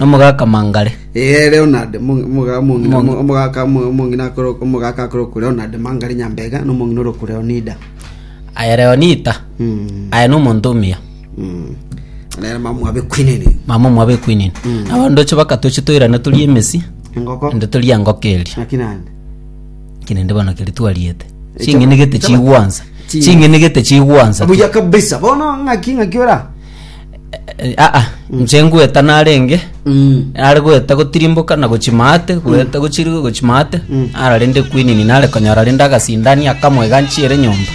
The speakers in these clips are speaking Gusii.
Nomogaka Mangare. Ee, Leonard, omo- omogaka omong'ina Omong'ina. omogaka omo- omong'ina akore omogaka akore oku Leonard Mangari Nyambega na omong'ina ore oku Leonida. Aye Leonita. Mm, Aye nomonto omuya. mm. Nere mama mwabe kwinini. Mama omwabe kwinini. Mm. Nabo ndoche bakatoche toirane torie emesi. Engoko. Ende torie engoko eria. Naki nande. Kinende bono keri twariete. Ching'enegete chigwansa. Chi- Ching'enegete chigwansa. Obuya kabisa. Bono ng'aki ng'aki ora. Eh, aa nche ngweta narenge Mm. are gweta gotirimboka na gochimate gweta gochirigo gochimate Mm. ara rende kwinini nare konyora rende agasindani akamwe ganchiere nyomba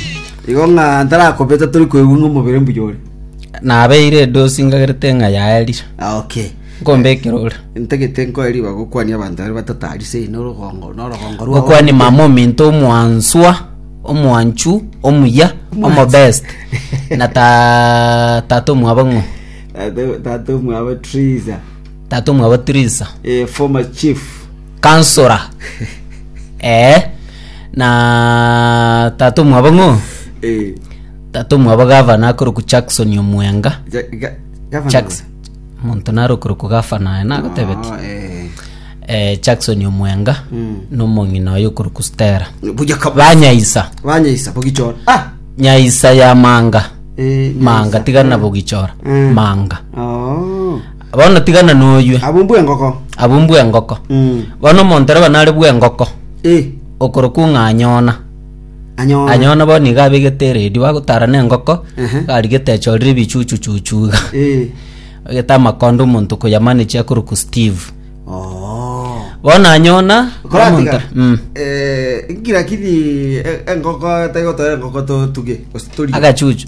igo ng'a ntarakobeta tori koigwa ng'a omobere mbuya ore nabeire edosi ngagerete ng'a yaerire Ah, okay nkombekera ore ntagete nkoe riba gokwania abanto bare batatarise orogongo norogongo rwao gokwani mama ominto omwanswa omwanchu omuya omobest na ta- tata omwabo ng'o Tata- tata omwabo triza tata omwabo trisa eh, former chief kansora ee na tata omwabo ng'o eh, tata omwabo gavana akoroku jackson omwenga ja- ga- governor Jackson. Omonto narokorokwa gafana aye nagotebetie, Ah, eh. eh, Jackson Omwenga na omong'ina oye okorokwa Stella Buya kabisa. banyaisa Banyaisa bogichora. Ah. nyaisa ya manga Eh, manga nyaisa. tigana Eh. bogichora Mm. manga Oh. bono tigana noywe Abo mbwe ngoko. abwo mbwe engoko Mm. bono omonto raba nare bwe engoko Eh. okorokwa ng'anyona Anyona bono nigo abegete eredi bagotaara nengoko, arigete achorire ebichuchu chuchu iga. Abegete amakondo omonto koyamanage akorokwa Steve. Bono anyona omonto mm, Lakini engoko taigotoera engoko totuge gose torige agachuchu.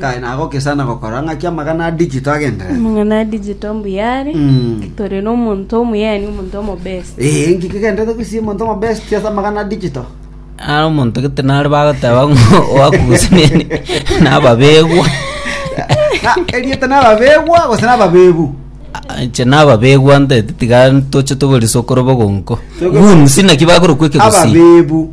Kae nagokesana gokora ng'aki amagana a digital agenderere. Amang'ana a digital mbuyare. Mm. Tore n'omonto omuyani, omonto omobesi. Eh, inki kigenderete kwisia omonto omobest ase amagana a digital? Ara omonto gete nare bagoteba ng'o oakugusinene nababegwa. Na eriete nababegwa gose nababebu. Inche nababegwa ntaete tiga toche togore sokoro bogonko. Togore- Wounds naki bakorokwa ekegusii. Ababebu.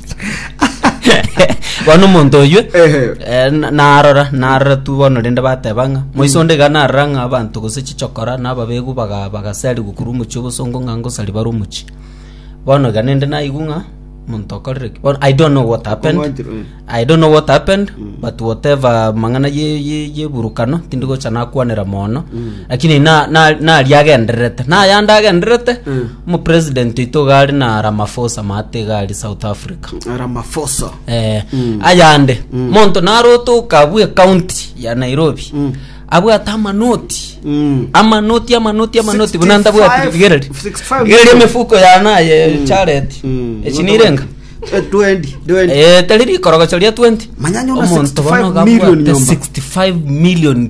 bono omonto oywe Ehe. eh, na- narora narora tu bono rende bateba ng'a moise onde iga narora ng'a abanto gose chichokora na ababegu baga- bagaseri gokuru omochi obosongo ng'a ngosari bare omochi bono iga nende naigwa ng'a omonto okorire ki bono i don't know what happened Omwanchire, eh. I don't know what happened but whatever mang'ana ye- ye- yeburukano tindi gocha nakwanera mono Lakini na- na- naria agendererete naya nde agendererete Mm. omopresident oito iga are na ramafosa maate iga are south africa ramafosa eh, Mm. ayande Mm. monto narotoka abwe county ya nairobi Mm. abwate amanoti Mm. amanoti amanoti amanoti 65, buna ndabwati rigereri 65 rigereri million. emifuko yanaye chareti Mm. echinirenga Eh, 20, 20. Eh, tari rikorogocho ria 20 Manyanya una Omonto 65 bono million gabwate nyomba. 65 million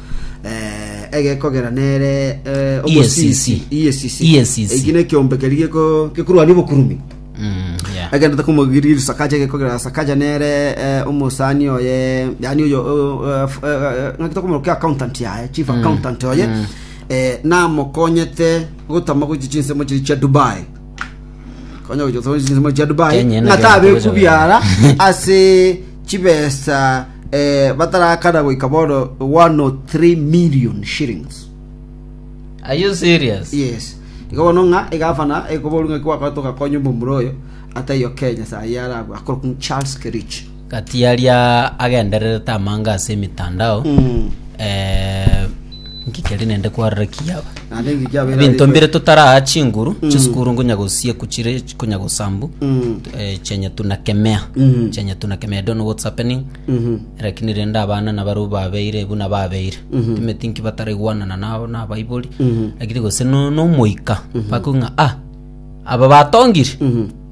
eh, egekogera nere eh, omosisi EACC. EACC. EACC. eki nekiombe keri geko- gekorwania obokurumi Mm, yeah. agendete kumogiriri sakaja gekogera sakaja nere eh, omosani oye yani oyo ngakita kumoro ke accountant yaye chief accountant oye eh, namokonyete gotama gochi chinsemo chiri chia dubai konya gochi gotama gochi chinsemo chia dubai Kenya ena ngata kera abeku gocha biara ase chibesa batarakana goika bono 103 million shillings. Are you serious? Yes. Igo bono ng'a egavana ekoboru ng'aki gwakorete ogakonya omomura oyo, ataiyo Kenya saa eyio arabwo, akorokwa ng'a Charles Kerich. Gati aria agendererete amanga ase emitandao eh, Nki keri nende kwararakia aba? Naende nki kiabeire Ebinto arikwe? mbire totaraa chinguru chisukuru ngonya gosieku chire konya gosambu Mm. eh, chenye tunakemea Mhm. chenye tunakemea I don't know what's happening Mhm. lakini rende abana nabaru babeire buna babeire Mhm. timeti nki bataraigwanana nabo na abaibori Mhm. lakini gose no- nomoika bakong'a ah aba batongiri Mhm.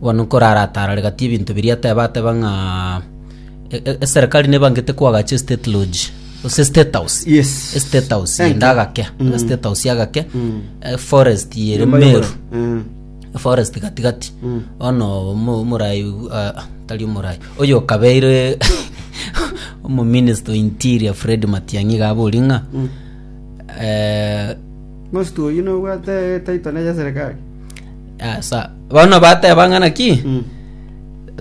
Bono nkoraratarare gati ebinto biria ateba, ateba ng'a eserekari nebangete koagacha estate lodge, gose estate house. Yes. Estate house Thank yende you. agake, estate house agake, eh, forest ere Nyomba Meru. y'oboro. Mm. forest gati gati ono omo- omorai ah, tari omorai oyo okabeire omominister interior fred matiang'i gabori ng'a eh, Most oyi nobwate etaito ne ya serikali. Asa, bono bateba ng'a naki Mm.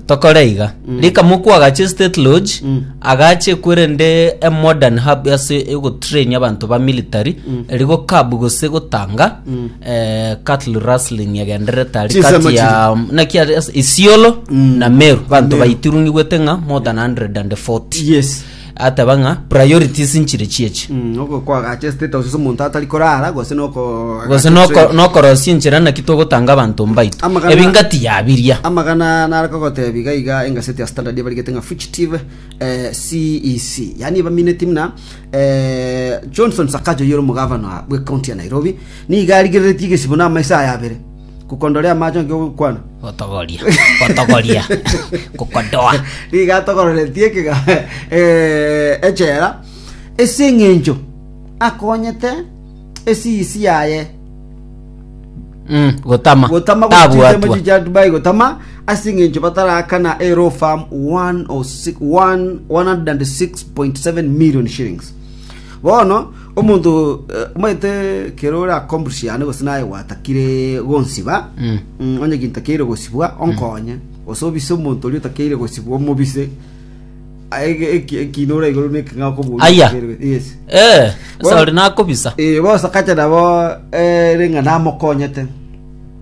tokore iga Mm. rika mokwa agache state lodge Mm. agache kwerende a modern hub ase egotrain abanto ba military Mm. erigo kabu gose gotanga Mm. eh, cattle rustling egenderete ari Chisemo kati ya naki ari ase isiolo Mm. na meru banto Meru. baitirunigwete ng'a more than 140 yes ateba ng'a priorities nchire chiechi Mm, oko kwagacha state house ase omonto atari korara gose noko gose noko- nokorosia enchera naki togotanga abanto mbaito Amagana- ebi ngati yabiria amagana nare kogotebi gaiga engaseti ya standard ebarigete ng'a fugitive eh, cec yaani ebamineti muna eh, johnson sakaja oyere omogavana bwe county ya nairobi nigo arigereretie egesibo na amaiso aya abere Kukondore amache onsi ogokwana. Gotogoria. Gotogoria. Kokodoa. Nigo atogororetie ekega eh, echela ase eng'encho akonyete esiisi yaye Mm, gotama. gotama Tabuatwa. gochicha dubai gotama ase eng'encho batarakana ero farm 106 106.7 million shillings bono Omonto omanyete kere ore akombusiane gose naye gwatakire gonsiba, onye kintu takeire gosibwa onkonye, gose obise omonto oria otakeire gosibwa omobise Ege- eki- ekina ore igoro na eking'a okobua Aya. yes Eh, Well- sori nakobisa. Eh, bosa kache nabo eh, ring'a namokonyete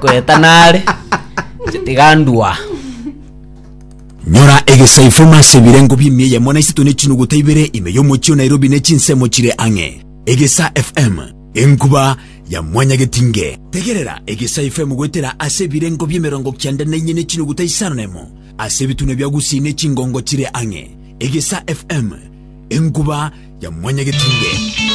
Goeta nare, tiga ndua. Nyora egesaifo mase ebirengo bi'emia eyemo na isato ne chinuguta ibere ime y'omochie o Nairobi ne chinsemo chire ang'e. Egesa FM, enkuba ya mwanyagetinge. Tegerera Egesa FM goetera ase ebirengo bi'emerongo kianda na inye ne chinuguta isano na emo ase ebitunwa bia Gusii ne chingongo chire ang'e. Egesa FM, enkuba ya mwanyagetinge.